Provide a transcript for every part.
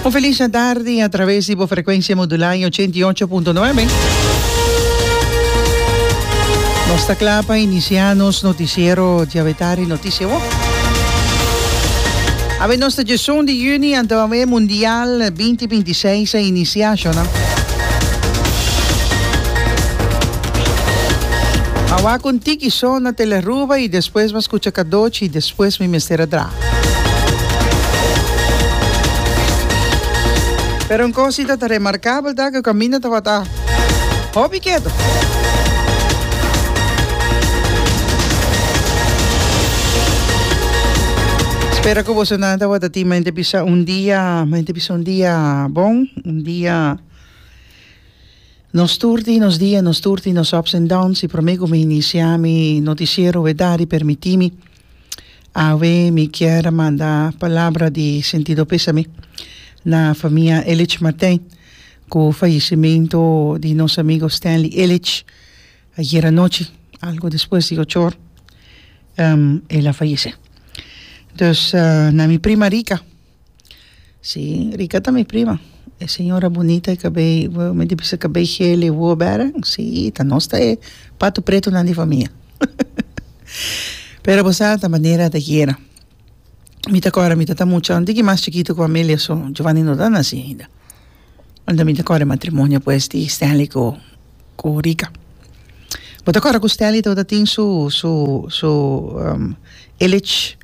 Un felice tarde a través di bo frecuencia modulada en 88.9. Nos ta cla pa inicia nos noticiero diawe tarde noticia wak. Awe nos ta djesun di juni anto awe mundial 2026 a inicia shona. Ma wak un tiki so na Tele Aruba y despues bo a scucha cadochi y despues mi mester a dra. Pero un cosita ta remarcabel ta cu caminda tabata hopi keto. Spero cu bosonan tabata tin mente bisa un dia, mente bisa un dia bon, un dia nos turti, nos dia nos turti, nos ups and downs y prome cu mi inicia mi noticiero e dari permitimi. Awe mi kier a manda palabra di sentido pesami na famia Elich Martijn cu fallecimento di nos amigo Stanley Elich ayer anochi algo despues di ocho or um, el a fallece. Dus uh, na mi prima Rica. Si rika ta mi prima e señora bunita di cabei mi ta bisa cabei gel y woe bere si ta nos ta e pato pretonan di famia pero bo sa ta manera ta yera mi ta corre mi ta ta mucha un tiki mas chikito cu Amelia so Jovani no ta naci ainda enta mi ta corre matrimonio pues di Stanley cu cu rica. Bo ta acorda cu Stanley tabata tin su su su Illich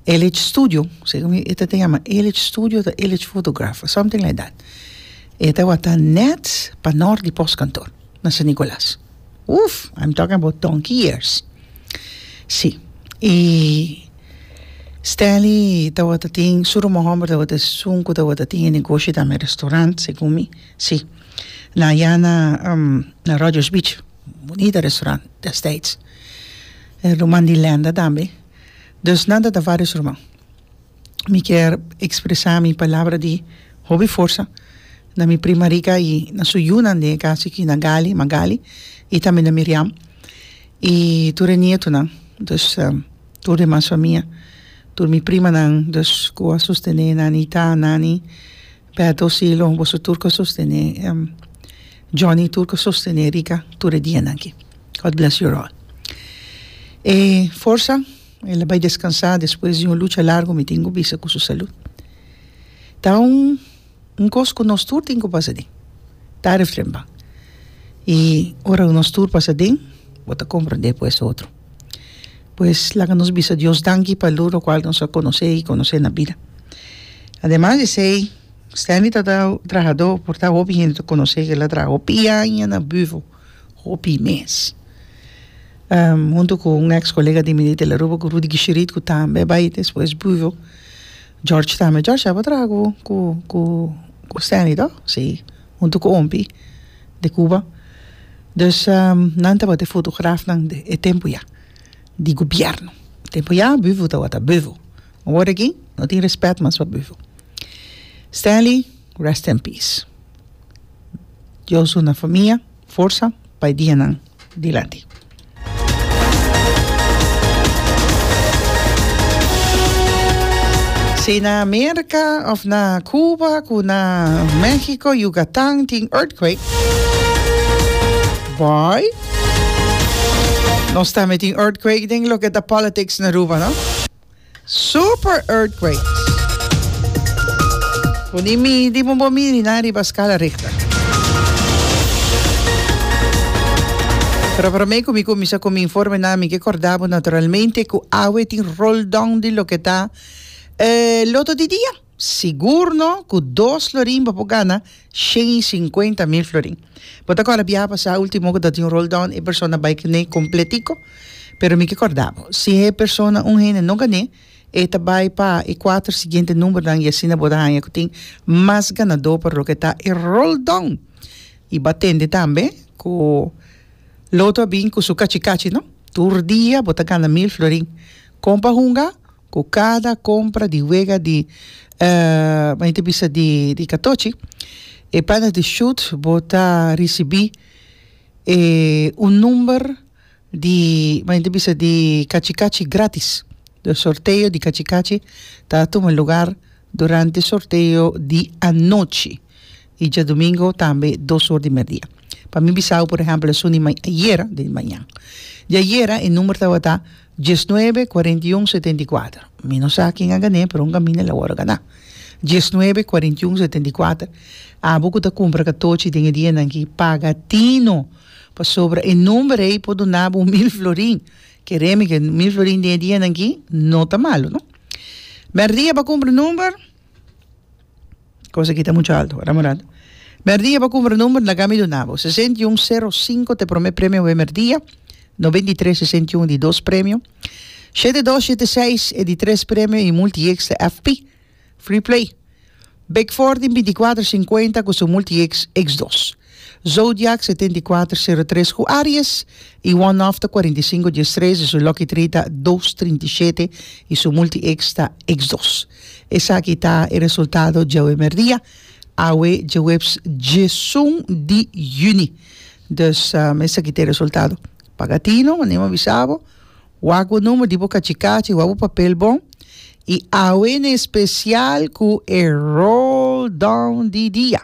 Illich Studio si mi e ta tin ama Illich Studio ta Illich Photograph something like that e tabata net pa nor di post kantoor na San Nicolas uff I'm talking about donkey years si y Stanley tabata tin su rumohomber tabata esun cu tabata tin e negoshi dame restaurant segun mi si. Na ya na na Rogers Beach bunita restaurant destijds e ruman di lenda tambe dus nan ta ta varios ruman mi kier expresa mi palabra di hopi forsa na mi prima Rica y na su yunan den e cas aki na Gali Magali y tambe na Miriam y tur e nietonan dus tur demas famia tur mi primanan dus cu a sostene nanita nani Beto Silo, boso tur ko sostené Johnny tur ko sostené rica tur e dianan ki. God bless you all. E forsa el a bai descansa despues di un lucha largo mi tin cu bisa cu su salud. Ta un cos cu nos tur tin cu pasa aden tarde o tremba y ora nos tur pasa aden bo ta comprende pues otro. pues laga nos bisa Dios danki pa lur lokual nos a konos'é i konos'é na bida. Ademas di esei, Stanley ta trahadó por ta hopi hende ta konos'é kila traha hopi aña na Büvo, hopi mes. Huntu ku un eks kolega di mi di Italaruba ku Rudy Gishirit ku tambe a bai despues Büvo, George tambe. George tabata traha ku ku ku Stanley to? Sí. huntu ku ompi di Cuba. Dus nan tabata e fotografnan di e tempu ya di gobièrnu. Tempu ya büfu tabata büfu. Awor aki no tin rèspèt mas pa büfu. Stanley rest in peace. Dios una famia. Forsa pa e dianan dilanti. Si na Merca of na Cuba cu na Mexico, Yucatan tin earthquake, boy, nos tambe tin earthquake den loke ta politics na Aruba, no? Super earthquake. Bo ni midi bo bo miri nan riba skala Richter. Pero prome ku mi kuminsa ku mi informenan mi ke korda bo naturalmente ku awe tin roldon di loke ta loto di dia. Sigur no cu dos florin bo por gana shen y cincuenta mil florin. Bo ta acorda biaha pasa ultimo cu ta tin un roll down e persona bay kne completico? Pero mi ke corda bo, si e persona un hende no gané e ta bay pa e cuater siguiente numbernan y asina bo ta haya cu tin mas ganador pa loke ta e roll down. Y bo a tende tambe cu Lotto a bin cu su cachi cachi no, tur dia bo ta gana mil florin. Con pa hunga? Ku kada kompra di wega di mani ta bisa di di katochi e panas di Sjoerd bo ta risibí e un number di mani ta bisa di kachi kachi gratis de sorteo di kachi kachi ta tuma lugar durante sorteo di anochi y djadomingo tambe dos or di merdia. Pa mi bisao por ehempel esun di ayera den mañan. Di ayera e number tabata diesnuebe kuarentiun setenta i kuater. Mi no sa ken a gané pero un kaminda el a wòrdu ganá. Diesnuebe kuarentiun setenta i kuater. Abo ku ta kumpra katochi den e dianan aki paga tino pasobra e number ei por duna bo mil florin. Kere mi ke mil florin den e dianan aki no ta malu no. Merdia bo a kumpra number. Cosa aki ta mucho alto, wara Murado? Merdia pa cumpra number na gami dunabo, sesenta i un sero sinku t'e prome premio wei merdia, noventa i tres sesenta i un di dos premio, shete dos shete seis e di tres premio i multieks ta FP, Free Play, Big Four tin binti kuater sinkuenta ku su multieks eks dos. Zodiac, setenta i kuater, sero tres, ku Aries, i one off ta kuarenta i sinku, dies tres, i su lucky tree ta dos, trinta i shete, i su multi ex ta ex dos. Esaki ta e resultado djawe merdia, awe djeweps djesun di yüni. Dus, esaki ta e resultado. Paga tino, mane bo bisa bo, wak bo number, di bo kachi kachi, wak bo papel bon, i awe n'especial ku e roll down di dia.